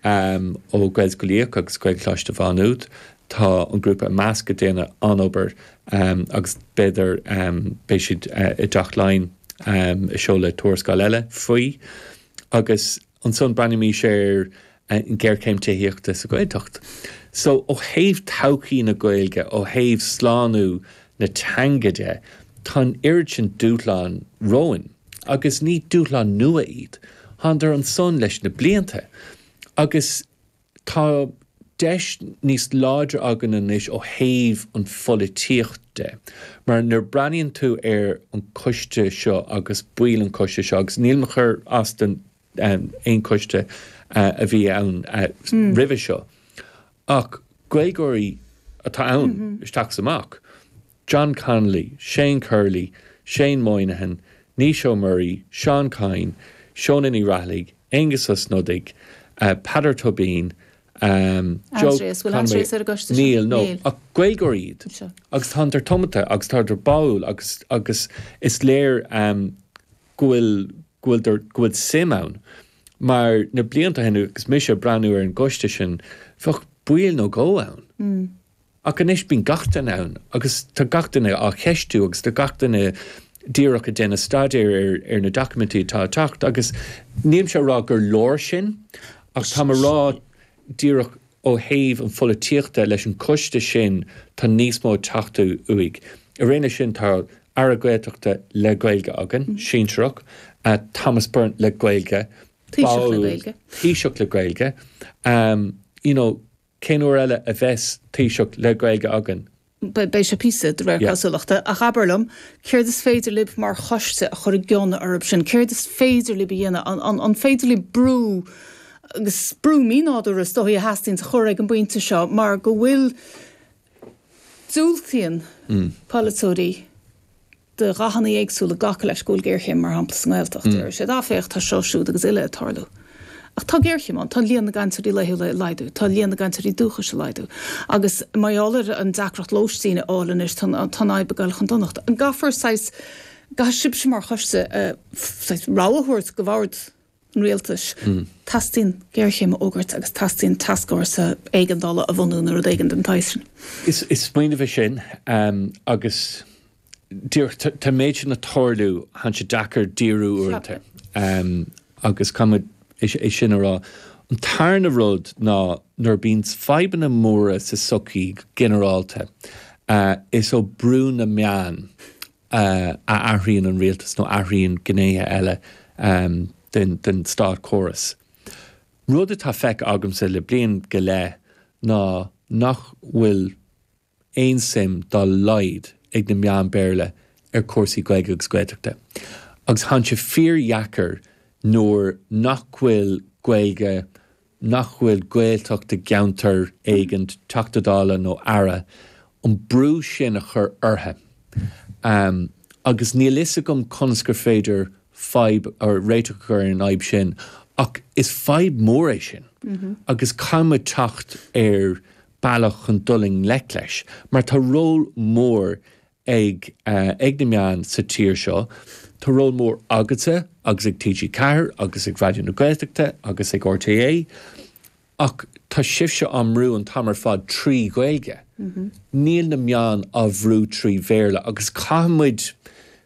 ó Ghaelscolaíocht agus Gaelcholáiste Mhá Nuad. Tá an grúpa i measc ag déanamh an-obair agus b'fhéidir beidh siad i dTeach Laighean ag seoladh tuarascáil eile faoi. Agus ansan breathnaímis ar an ghéarchéim tithíochta sa Ghaeltacht. So, ó thaobh todhchaí na Gaeilge, ó thaobh slánú na teanga de, tá an oiread sin dúshlán romhainn. Agus ní dúshlán nua iad. Tánadar ansan leis na blianta. Agus tá deis níos láidre againn anois ó thaobh an pholaitíocht de. Mar nuair a breathnaíonn tú ar an choiste seo agus baill an choiste seo, agus nílim ag cur as don aon choiste a bhí ann roimhe seo ach Gaeilgeoirí atá ann isteach is amach, John Connolly, Shane Curley, Shane Moynihan, Naoise Ó Muirí, Seán Kyne, Shónagh Ní Raghallaigh, Aengus Ó Snodaigh, Peadar Tóibín, níl, nó, ach Gaeilgeoirí iad agus tánadar tiomanta agus tádar báúil agus is léir. go bhfuil, go bhfuil, go bhfuil suim ann mar na blianta ó shin agus mise ag breathnú ar an gcoiste sin, bheadh ball nó dhó ann. Ach anois bíonn gach éinne ann agus tá gach éinne á cheistiú agus tá gach éinne díreach ag déanamh staidéir ar, ar na documentaí atá ag teacht agus nílimse a' rá gur leor sin ach táim a' rá, díreach ó thaobh an pholaitíochta leis an choiste sin tá níos mó ag teastáil uaidh. Ina dhiaidh sin tá Aire Gaeltachta le Gaeilge againn, sinsearach, Thomas Byrne le Gaeilge, Taoiseach le Gaeilge. You know cén uair eile a bheas Taoiseach le Gaeilge againn? Beidh sé píosa, de réir cosúlachta. Ach abair liom, céard is féidir libh mar choiste a chur i gcion orthu sin? Céard is féidir libh a dhéanamh? An féidir libh brú, agus brú mínádúrtha is dóigh a theastaíonns a chur ag an bpointe seo mar go bhfuil, diúltaíonn polaiteoirí, de dhathanna éagsúla glacadh leis, go bhfuil géarchéim, mar shampla, sa nGaeltacht. Deir siad, ah, féach, tá seo, siúd agus uile ag tarlú. Ach tá géarchéim ann, tá líon na gcainteoirí laethúla ag laghdú, tá líon na gcainteoirí dúchais ag laghdú. Agus mar gheall ar an deacracht lóistín a fháil anois, tá an fhadhb ag dul chun donachta. An gcaithfear, saghas, gcaithfidh sibhse mar choiste, saghas, rogha a thabhairt d'oifigigh an rialtais. Teastaíonn géarchéim a fhógairt agus teastaíonn tascfhórsa éigeandála a bhunú nó rud éigin den tsaghas sin. Is smaoineamh é sin agus díreach tá an méid sin ag tarlú, tá sé deacair díriú uaireanta agus caithfidh muid é sin a rá. An tarna rud ná nuair a bíonn fadhbanna móra sa tsochaí go ginearálta, is ó brú na meán a athraíonn an rialtas nó athraíonn gnéithe eile den státchóras. Rud atá feicthe agamsa le bliain go leith ná nach bhfuil aon suim dá laghad ag na meáin Béarla ar chúrsaí Gaeilge agus Gaeltachta. Agus tánn sé fíordheacair nuair nach bhfuil Gaeilge nach bhfuil Gaeltacht i gceantar éigin, Teachta Dála nó Aire, an brú sin a chur orthu. Agus níl fhios agam conas gur féidir fadhb, or réiteach a chur ar an fhadhb sin ach is fadhb mhór é sin agus caithfidh muid teacht ar bealach chun dul i ngleic leis mar tá ról mór ag ag na meáin sa tír seo. Tá ról mór agatsa agus ag TG4 agus ag Raidió na Gaeltachta agus ag RTÉ ach tá sibhse á mbrú an t-am ar fad trí Ghaeilge. Níl na meáin á bhrú trí Bhéarla agus caithfidh muid,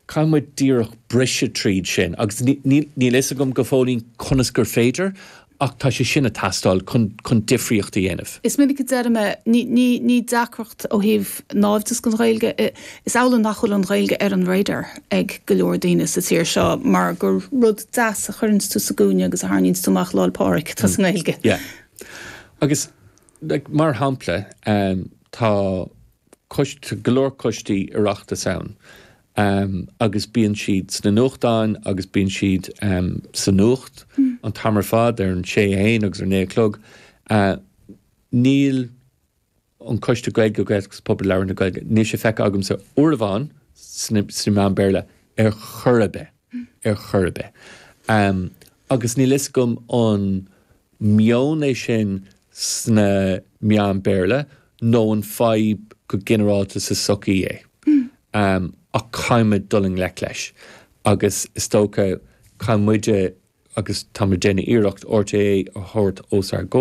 caithfidh muid díreach briseadh tríd sin agus níl, níl fhios agam go fóillín conas gur féidir Ach tá sé sin ag teastáil chun difríocht a dhéanamh. Is minic a deirimse, ní deacracht ó thaobh naimhdeas don Ghaeilge, is amhlaidh nach bhfuil an Ghaeilge ar an radar ag go leor daoine sa tír seo mar gur rud deas a chuireanns tú sa gcúinne agus a tharraingíonns tú amach Lá'l Pádraig atá sa nGaeilge. Yeah. Agus like, mar shampla, tá go leor coistí Oireachtais ann Em, agus bíonn siad sna nuachtáin agus bíonn siad, em, sa nuacht an t-am ar fad, ar an sé a haon agus ar naoi a chlog. A, níl an Coiste Gaeilge, Gaeltacht agus Pobal Labhartha na Gaeilge, níl sé feicthe agamsa uair amháin sna, sna meáin Béarla ar chor ar bith. ar chor ar bith. Agus níl a fhios agam an meon é sin sna meáin Béarla nó an fadhb go ginearálta sa tsochaí é. Ach caithfimid dul i ngleic leis. Agus is dócha, caithfidh muide, agus tá muid ag déanamh iarracht, RTÉ a thabhairt os ár gcomhair.